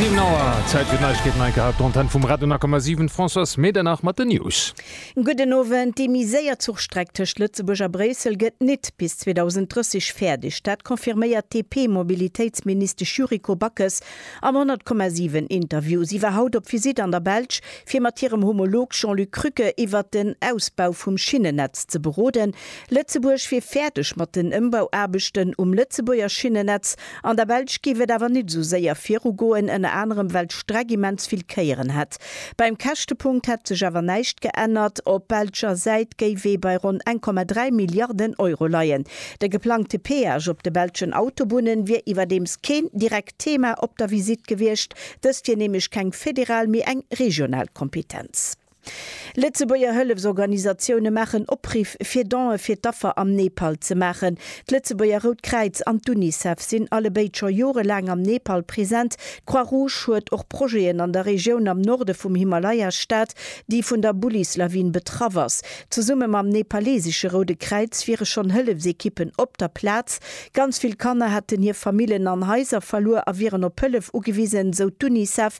7 Auer, Zäit fir d'Neiegkeeten, hei gehabt d'Antenn vum Radio 9,7, d'Françoise Medernach mat den News. Gudden Owend, Déi méi séier Zuchstreck tëscht Lëtzebuerg a Bréissel gëtt nit bis 2030 fäerdeg. Dat confirméiert d'DP-Mobilitéitsministesch Yuriko Backes am 100,7 Interview. Si war haut op Visitt an der Belsch, fir mat hirem Homolog Jean-Luc Krücke iwwert den Ausbau vum Schinnennetz ze beroden. Lëtzebuerg wier fäerdeg mat den Ëmbauaarbechten um Lëtzebuerger Schinnennetz. An der Belsch giff et awer nit esou séier viru goen, ënner anerem well d'Streck immens vill Kéieren hätt. Beim Käschtepunkt hätt sech awer näischt geännert. Op belscher Säit géif ee bei ronn 1,3 Milliarden Euro leien. De geplangte Peage op de belschen Autobunnen wier iwwerdeems keen direkt Thema op der Visitt gewiescht. Dëst wier nämlech keng federal, mee eng regional Kompetenz. Lëtzebuerger Hëllefsorganisatioune maachen Opriff fir Donë fir d'Affer am Nepal ze maachen. D'Lëtzebuerger Rout Kräiz an d'Unicef sinn allebéid scho jorelaang am Nepal present. D'Croix Rouge huet och Projeten an der Regioun am Norde vum Himalaya-Staat, déi vun der Bullis-Lawin betraff ass. Zesumme mam nepalesesche Roude Kräiz wiere schonn Hëllefsekippen op der Plaz. Ganz vill Kanner hätten hir Famillen an Haiser verluer a wieren op Hëllef ugewisen, sou d'Unicef.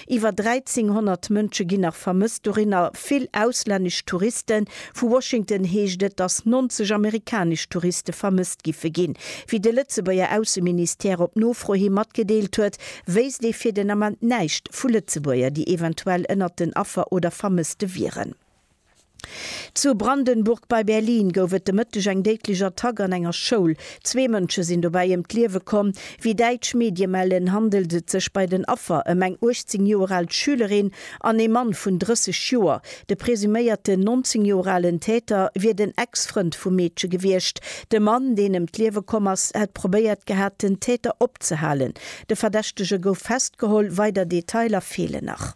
Iwwer 1.300 Mënsche ginn nach vermësst, dorinner vill auslännesch Touristen. Vu Washington heescht et, datt 90 amerikanesch Touriste vermësst giffe ginn. Wéi de Lëtzebuerger Ausseministère op Nofro hi matgedeelt huet, wéisst ee fir den Ament näischt vu Lëtzebuerger, déi eventuell ënnert den Affer oder Vermësste wieren. Zu Brandenburg bei Berlin gouf et de Mëtteg eng déidlech Attack an enger Schoul. Zwee Mënsche sinn dobäi ëm d'Liewe komm. Wéi däitsch Medie mellen, handelt et sech bei den Affer ëm eng 18 Joer al Schülerin an ee Mann vun 30 Joer. De presuméierten 19 Joer alen Täter wier den Ex-Frënd vum Meedche gewiescht. De Mann, deen ëm d'Liewe komm ass, hätt probéiert gehat, den Täter opzehalen. De Verdächtege gouf festgeholl, weider Detailer feelen nach.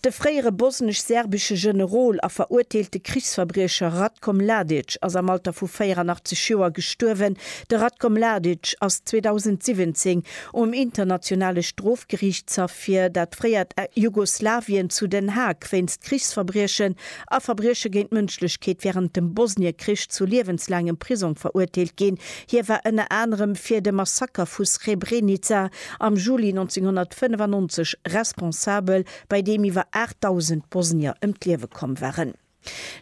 De fréiere bosnesch-serbesche Generol a verurteelte Krichsverbriecher Ratko Mladic ass am Alter vu 84 Joer gestuerwen. De Ratko Mladic ass 2017 um Internationale Strofgeriichtshaff fir dat fréiert Jugoslawien zu Den Haag wéinst Krichsverbriechen a Verbrieche géint d'Mënschlechkeet wärend dem Bosniekrich zu liewenslaangem Prisong verurteelt ginn. Hie war ënner anerem fir de Massaker vu Srebrenica am Juli 1995 responsabel, bei deem iwwer 8.000 Bosnier ëm d'Liewe komm waren.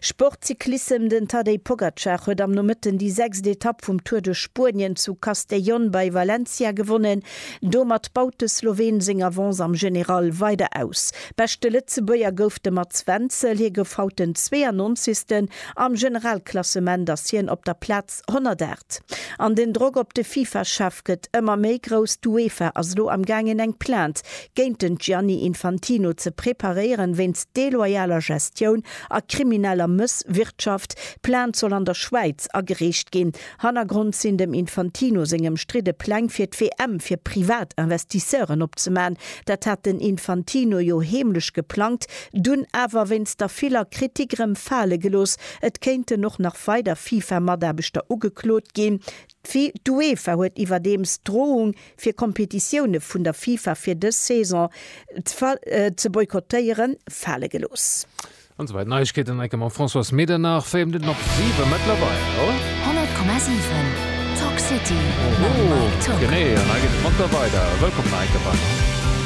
Sportcyclissem Den Tadej Pogacar huet am Nomëtten déi sechst Etapp vum Tour de Spuenien zu Castellón bei Valencia gewonnen. Domat baut de Sloween seng Avance am General weider aus. Beschte Lëtzebuerger gouf de Mats Wenzel, hie gouf haut den 92. Am Generalklassement ass hien op der Plaz. 108. An den Drock op de Fifa-Chef gëtt ëmmer méi grouss. D'Uefa ass elo am gaangen eng Plainte géint den Gianni Infantino ze preparéieren, wéinst deloyaler Gestioun a krimineller Mësswirtschaft. D'Plainte soll an der Schwäiz agereecht ginn. Hannergrond sinn dem Infantino seng ëmstridde Pläng fir d'WM fir privat Investisseuren opzeman. Dat hat den Infantino jo heemlech geplangt, dunn awer wéinst der viller Kritik rëm fale gelooss, Et kéinten och nach weider FIFA-Mataarbechter ugeklot ginn. D'UEFA huet iwwerdeems d'Drohung, fir Kompetitioune vun der FIFA fir dës Saison ze boykottéieren, fale gelooss. An soweit Neiegkeeten enke mam Françoise Medernach, 4 Minutten op 7 mëttlerweil. 100,7 Talk City mam Mike Tock. Genee an hei geet et munter weider. Wëllkomm nach enke beim.